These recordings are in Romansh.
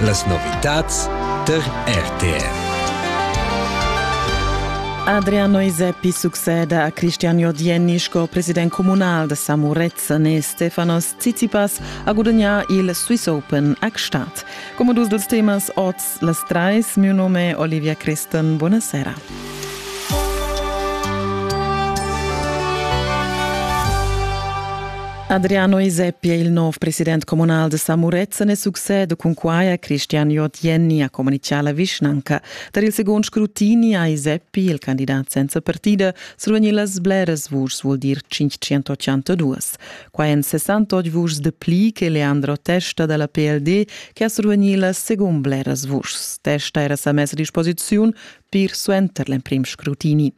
Las novitads tar RTR. Adriano Iseppi succeda a Cristian Jordienni sco president comunal da Samurezan e Stefanos Tsitsipas a gudagnare il Swiss Open a Gstaad. Come dus dels temas oz las trais, mio nome è Olivia Christen, buonasera. Adriano Iseppi è il nov president communal de Samurezzen e succede cun quai a Christian Jotjenni a comuniciala vischnanca. Tar il second scrutini ha Iseppi, il candidat senza partida, survegni las bleras vuschs vuol dir 582. Qua en 68 vuschs de pli che Leandro Testa dalla PLD che ha survegni las secund bleras vuschs. Testa era sa messa a disposiziun pir suenter l'emprim scrutini.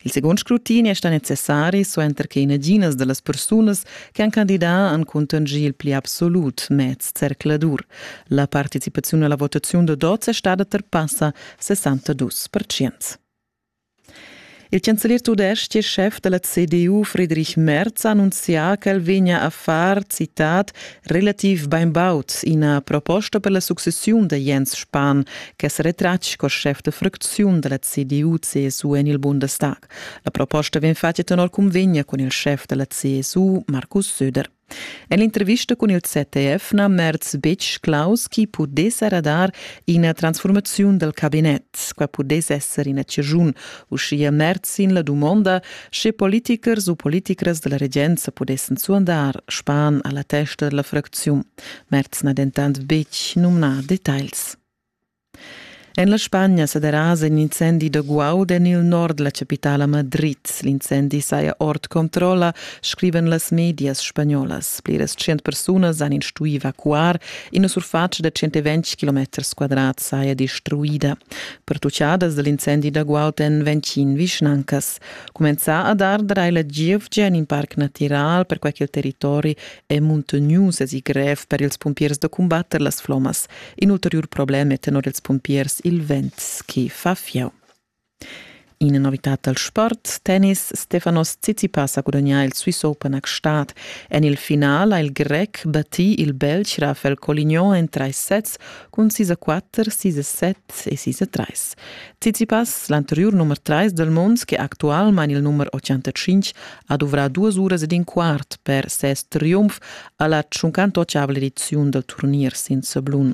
Il secund scrutin è stà necessari suenter che naginas da las persunas che han candidà han cuntanschì il pli absolut mez zercladur. La participaziun alla votaziun da dots è stada terpassa 62 percent. Il chancelier tudestg e chef della CDU Friedrich Merz ha annunzià ch'el vegna a far, citat, relativ bainbaud ina proposta per la successiun da Jens Spahn che sa retratg sco schef da fracziun da la CDU CSU en il Bundestag. La proposta vegn fatga tenor cunvegna cun il schef da la CSU Markus Söder. En l'intervista cun il ZDF n'ha Merz betg claus chi pudess radar ina transformaziun dal cabinet. Qua pudess esser ina cirgiun uschia merd sin la dumonda, sche politikers u politikras della regenza pudessen suandar span alla testa della fracziun. Merz n'ha dentant betg numnà details. En la Spagna sa derasa in incendi da guaud en il nord la capitala Madrid. L'incendi saja ord controlla, scriven las medias spagnolas. Pliras cent persunas han instui evacuar. Ina surface da 120 km quadrat saja destruida. pertuchadas dal incendi da Guauten vegn tschin vischnancas. Cumenzà a dar drai la gievgia in in parc natiral per quai ch'il territori è muntognius e grev per ils pumpiers da combatter las flomas. In ulteriur problem è tenor ils pumpiers il vent, che fa fieu. Ina novitad dal sport, tennis, Stefanos Tsitsipas ha gudagnà il Swiss Open a Gstaad. En il final ha il grec battì il Belg Rafael Colignon en trais sets cun sis a quatter, sis a set e sis a trais. Tsitsipas, l'anteriur nummer 3 dal mund, che actualmain il nummer 85, ha duvrà duas uras ed in quart per ses triumf a la 58 ediziun dal turnier senza blun.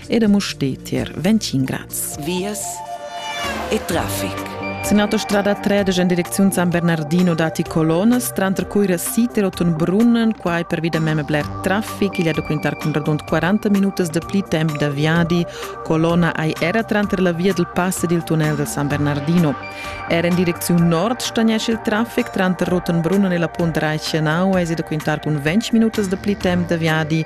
ed a Mustetier, Ventin Graz. Vias e traffic. Sin autostrada 13 en direcziun San Bernardino dati colonas, tranter cui siter otun brunnen, quai per via mem bler traffic, igl è da quintar cun radund 40 minutas de pli temp da viadi, colona ai era tranter la via del pass ed il tunnel del San Bernardino. Er in direcziun nord stagnesce il traffic tranter Rottenbrunnen e la Punt Reichenau, es da quintar cun 20 minutas de pli temp da viadi,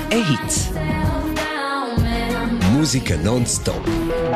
e hits. Musica non stop.